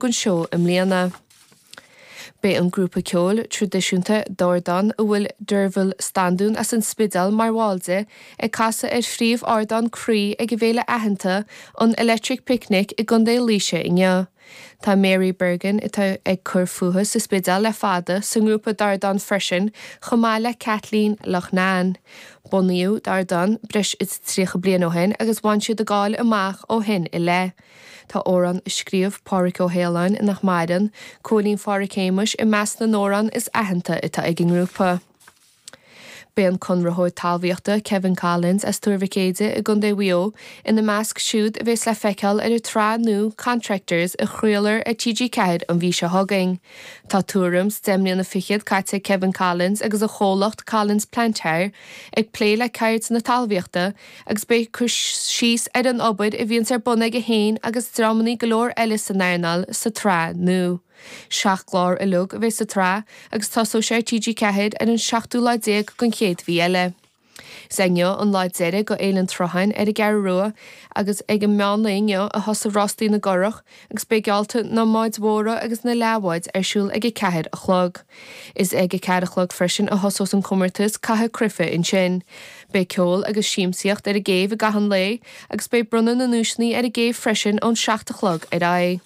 don seó i mbliana. Beidh an grúpa ceoil traidisiúnta Dordán, a bhfuil Dearbhaill Standún as an Spidéal mar bhall de, ag casadh ar phríomhardán Croí ag a bhféile aitheanta, an Electric Picnic i gContae Laoise inniu. Tá Mary Bergin, atá ag cur fúithi sa Spidéal le fada, sa ngrúpa Dordán freisin, chomh maith le Kathleen Loughnane. Bunaíodh Dordán breis is tríocha bliain ó shin agus bhain siad a gcáil amach ó shin i leith. Tá amhrán a scríobh Pádhraic Ó hAoláin, nach maireann, Cúilín Phádhraic Shéamais, i measc na n-amhrán is aitheanta atá ag an ngrúpa. Beidh an conraitheoir talmhaíochta Kevin Collins as Tuar Mhic Éadaigh i gContae Mhaigh Eo ina measc siúd a bheas le feiceáil ar an tsraith nua Contractors a chraolfar ar TG4 an mhí seo chugainn. Tá tuairim 's deich mbliana fichead caite ag Kevin Collins agus a chomhlacht Collins Plant Hire ag plé le ceird na talmhaíochta agus beidh cur síos ar an obair a bhíonns ar bun aige féin agus dreamannaí go leor eile san earnáil sa tsraith nua. Seacht gclár uilig a bheas sa tsraith agus tosóidh sé ar TG4 ar an seachtú lá déag den chéad mhí eile. Is é inniu an lá deiridh dho Fhéile an tSrutháin ar an gCeathrú Rua agus ag an meánlae inniu a thosaigh Rástaí na gCurrach, agus beidh geallta na mbád mhóra agus na leathbháid ar siúl ag a ceathair a chlog. Is ag a ceathair a chlog freisin a thosós an comórtas caitheamh cruife ansin. Beidh ceol agus siamsaíocht ar an gcéibh i gcaitheamh an lae agus beidh bronnadh na nduaiseanna ar an gcéibh freisin ón seacht a chlog ar aghaidh.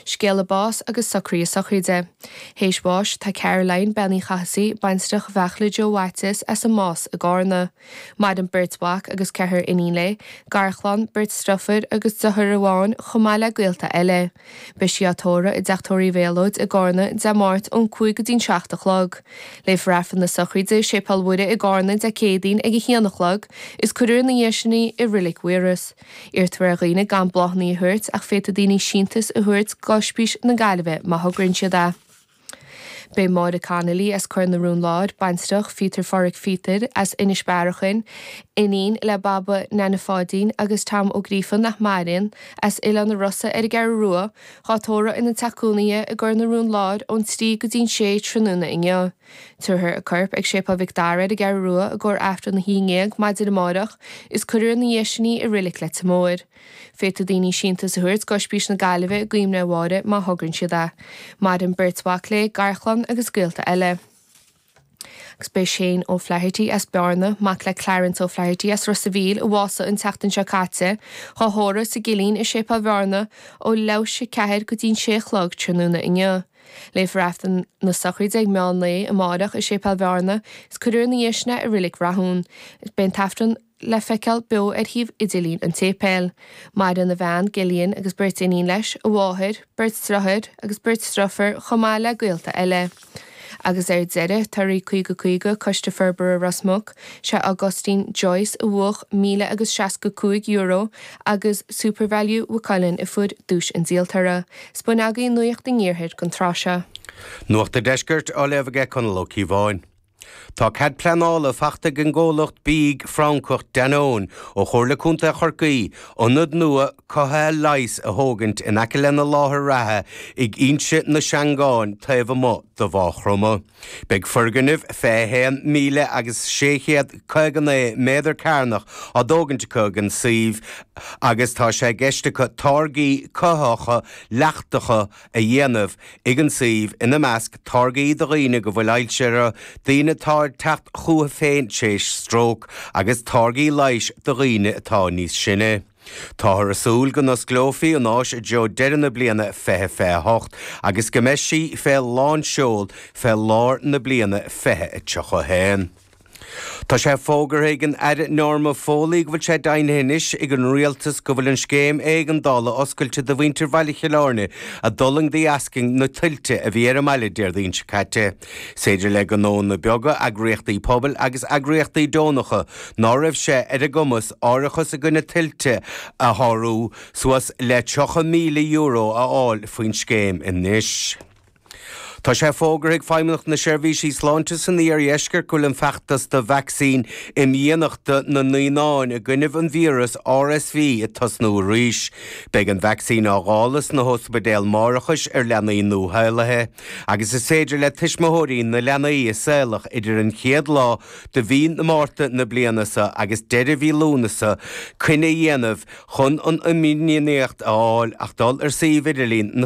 Scéala báis agus socraithe sochraide. Théis bháis tá Caroline, Bean Uí Chathasaigh, baintreach Bheartla Joe Mhaitiais, as an Más i gCárna. Maireann beirt mhac agus ceathrar iníon léi, garchlann, beirt driofúr agus dearthair amháin, chomh maith le gaolta eile. Beidh sí á tórradh i dTeach Tórraimh Mhylotte i gCarna, Dé Máirt, ón cúig go dtí'n seacht a chlog. Léifear Aifreann na Sochraide i Séipéal Mhuire i gCarna, Dé Céadaoin, ag a haon a chlog, is cuirfear ina dhiaidh sin í i Reilig Mhaírois. Iarrtar ar dhaoine gan bláthannaí a thabhairt, ach féadfaidh daoine síntiús a thabhairt dho Ospís na Gaillimhe, má thograíonn siad é. Beidh Máire Connolly as Cuar na Rón Láir, baintreach Pheter Phádraic Pheter as Inis Bearachain, iníon le Baba Neaine Pháidín agus Tom Ó Gríofa nach maireann, as Oileán na Rossa ar an gCeathrú Rua, dhá tórramh ina teach cónaithe i gCuar na Rón Láir ón trí go dtí'n sé tráthnóna inniu. Tabharfar a corp ag Séipéal Mhic Dara ar an gCeathrú Rua i gcomhair Aifreann a haon déag maidin amárach is cuirfear ina dhéidh sin í i Reilig Leitir Móir. Féadfaidh daoine síntiús a thabhairt d'Ospís na Gaillimhe i gcuimhne ar Mháire má thograíonn siad é. Maireann beirt mhac léi, garchlann agus gaolta eile. Agus beidh Shane O'Flaherty as Bearna, mac le Clarence O'Flaherty as Ros a' Mhíl, a bhásaigh an tseachtain seo caite, dhá thórramh sa gcillín i Séipéal Bhearna ó leathuair théis a ceathair go dtí'n sé a chlog tráthnóna inniu. Léifear Aifreann na sochraide ag meán lae amárach i Séipéal Bhearna, is cuirfear ina dhéidh sin é i Reilig Rathúin. Is beidh an tAifreann. le feiceáil beo ar shuíomh idirlín an tséipéil. Maireann a bhean, Gillian, agus beirt iníon leis, a mháthair, beirt dreatháir agus beirt driofúr chomh maith le gaolta eile. Agus ar deireadh, torthaí 50 50 Coiste Forbartha Ros Muc, sé Augustine Joyce a bhuach míle agus seasca cúig euro agus Supervalu Mhaigh Cuilinn a fuair duais an díoltóra. Sin a bhfuil againn de Nuacht an Iarthair an tráth seo. Nuacht an Deiscirt á léamh aige Conall Ó Ciabháin. Tá cead pleanála faighte ag an gcomhlacht bídh Francach Danone ó Chomhairle Contae Chorcaí ionad nua cothaithe leighis a thógaint in aice lena láthair reatha ag Inse na Seangán taobh amuigh de Mhagh Chromtha. Beidh foirgnimh 21,000 agus 659 méadar cearnach á dtógaint acu ag an suíomh agus tá sé i gceist acu táirgí cothaitheacha leachtacha a dhéanamh ag an suíomh, ina measc, táirgí do dhaoine go bhfuil ailse orthu, daoine atá ag teacht chucu féin tar éis stróc, agus táirgí leighis do dhaoine atá níos sine. Táthar ag súil go n-osclófaí an áis i dtreo deireadh na bliana 2028 agus go mbeidh sí fé lán seoil fé lár na bliana 2031. Tá sé fógartha ag an Aire Norma Foley go bhfuil sé deimhnithe anois ag an Rialtas go bhfuil an scéim éigeandála oscailte do mhuintir Bhaile Chill Airne a d'fhulaing de dheascaibh na tuilte a bhí ar an mbaile Déardaoin seo caite. Is féidir le gnóanna beaga, eagraíochtaí pobail agus eagraíochtaí deonacha ná raibh sé ar a gcumas árachas i gcoinne tuilte a shocrú suas le €30,000 a fháil faoin scéim anois. Tá sé fógartha ag Feidhmeannacht na Seirbhísí Sláinte san Iardheisceart go bhfuil an feachtas do vacsaín imdhíonachta na naíonáin i gcoinnibh an víreas RSV ag tosnú arís. Beidh an vacsaín á dáileadh sna hóspaidéil máithreachais ar leanaí nuashaolaithe agus is féidir le tuismitheoirí na leanaí a saolach idir an chéad lá de mhí na Márta na bliana seo agus deireadh mhí Lúnasa coinne a dhéanamh chun an imdhíonacht a fháil ach dul ar suíomh idirlín na